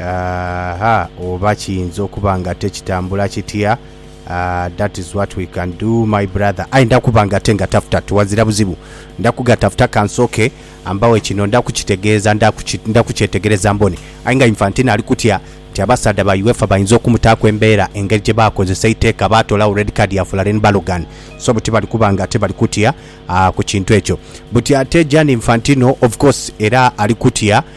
Aaha, oba kiyinza okuba nga ate kitambula kitya? Aah, that is what we can do my brother, aye ndakuba nga ate ngatafuta tiwazira buzibu, ndakugatafuta kansooke ambawe kino ndakukitegeeza ndakuki ndakukyetegereza mbone, aye nga Infantino ali kutya nti abasaadha ba UEFA bayinza okumutaaku embeera engeri gye baakozesa eiteeka baatoolagho red card ya Folarin Balogun so buti bali kuba nga ate bali kutya aah ku kintu ekyo. Buti ate Gianni Infantino of course era ali kutya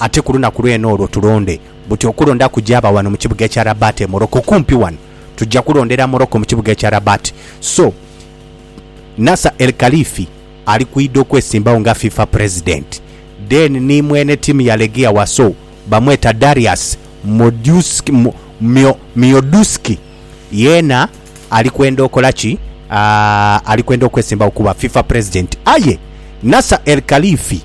Ate ku lunaku lwene olwo tulonde buti okulonda kujaaba wano mu kibuga ekya Rabat e Morocco, kumpi wano. Tuja kulondera Morocco mu kibuga ekya Rabat. So, Nasser El Khelaifi ali kwidha okwesimbagho nga fifa president. Then ni mwene tiimu ya Legia Warsaw bamweta Darius Mioduski. Yeena ali kwenda okola ki? Aah ali kwenda okwesimbawo kuba fifa president. Aye Nasser El Khalifi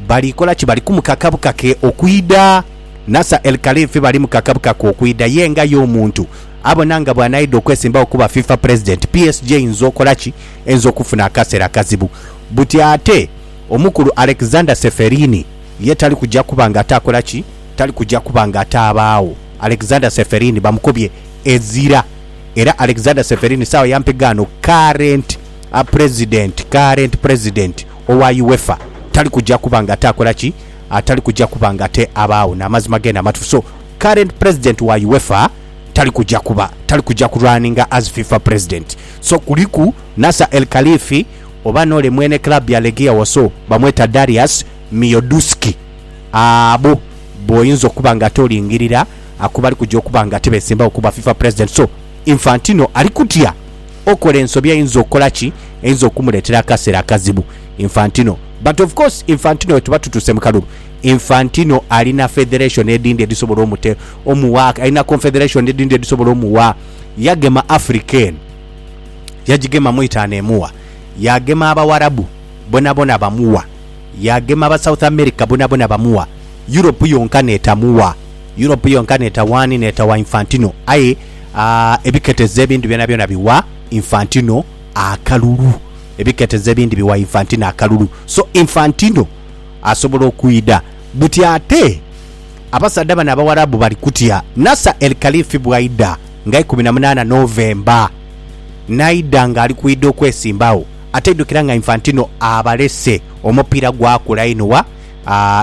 bali kola ki? Bali kumukaka bukake okwidha. Nasser El Khalifi bali mukaka bukake okwidha. Ye nga ye omuntu abona nga bwanaidha okwesimbawo kuba fifa president, PSG einza okola ki? Einza okufuna akasera akazibu. Buti ate omukulu Alexander Ceferini ye tali kuja kuba nga ate akola ki? Tali kuja kuba nga ataabaagho. Alexander Ceferin bamukubye ezira era Alexander Ceferin sawa ya mpiga ano current a president current president owa UEFA tali kuja kuba nga ataakola ki atali kuja kuba nga ate abaagho n'amazima gene amatufu so current president wa UEFA tali kuja kuba tali kuja ku runninga as FIFA president so kuliku Nasser El Khalifi oba n'ole mwene club ya Legia Warsaw bamweta Darius Miodouski. abo boyinza okuba nga ate olingirira aku bali kuja okuba nga ate beesimbawo kuba fifa president so Infantino ali kutya okola ensobi eyinza okola ki eyinza okumuleetera akaseera akazibu Infantino but of course Infantino wetuba tutuuse mu kalulu Infantino alina federation edindi edisobola omute omuwa alina confederation edindi edisobola omuwa yagema Africa eno yagigemamu itaano emuwa yagema abawarabu bonabona bamuwa Yaagema aba South America bonabona bamuwa, Europe yonka n'etamuwa. Europe yonka n'etawaani? N'etawa Infantino. Aye ebiketezo ebindi byonabyona biwa Infantino akalulu. Ebiketezo ebindi biwa Infantino akalulu. So Infantino asobola okwidha. Buti ate abasaadha bano Abawarabu bali kutya Nasser El Khalifi bw'aidha nga ikumi na munaana November, n'aidha ng'ali kwidha okwesimbagho. Ate idhukira nga Infantino abalese omupiira gwakula inho wa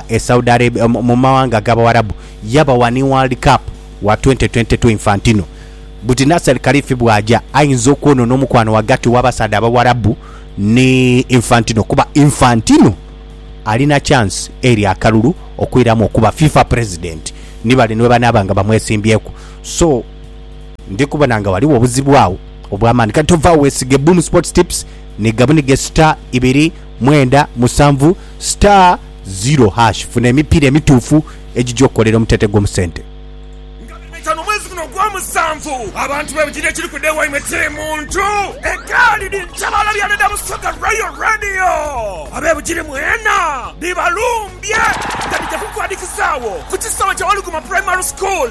e Saudi Arabia mu mawanga ag'Abawarabu yabawa ni World Cup wa twenti twenti tu. Infantino buti Nasser Khelaifi bw'aja aidha okwonona omukwano ghagati w'abasaadha Abawarabu ni Infantino kuba Infantino alina chance eri akalulu okwiramu okuba FIFA President ni bali ni bwe banaaba nga bamwesimbyeku so Ndi kubona nga ghaligho obuzibu agho obw'amaani. Kati tovagho weesige Boom Sports Tips ni gabunige star ibiri mwenda musanvu star zero hash funa emipiira emituufu egija okukolera omutete gwo mu sente. Nga biri bitaanu omwezi guno ogw'omusanvu, abantu b'ebigina ekiri ku dheewa imwe kiri muntu egaali dhi ntabaala bya dada Busoga Royal Radio. Ab'ebigiri mwena dhibalumbye nga dhija kukuadhikizagho ku kisaawe kya Waluguma Primary School.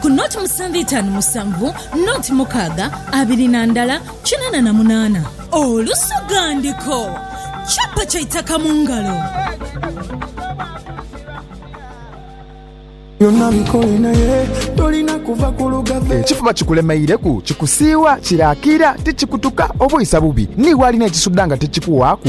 ku noti musanvu itaanu musanvu, noti mukaaga abiri na ndala kinana na munaana. Olusoghandiko, Chapa kya itaka mu ngalo. Ekifuba kikulemeireku, kikusiiwa, kiraakira, tikikutuka, obwisa bubi. Ni walina ekisuda nga tikikuwaaku?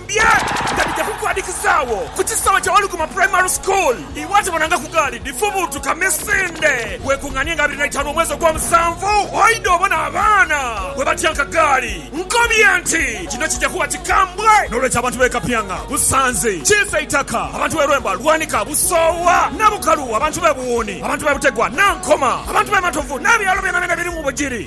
Bye nga bidha kukwadhikizaagho ku kisaawe kya Waluguuma Primary School. Iwe atabonangaku gaali dhifubuutuka misinde, weekung'anie nga abiri na itaanu omwezi ogw'omusanvu oidhe obone abaana bwe batyanka gaali. Nkobye nti kino kija kuba kikambwe n'olwekyo abantu b'e Kapyang'a, Busanzi, Kiisa Eitaka, abantu b'e Lwemba, Lwanika, Busoowa ne Bukalu, abantu b'e Buwuuni, abantu b'e Butegwa, Nankoma, abantu b'e Matovu n'ebyalo byonabyona ebiri mu Bugiri.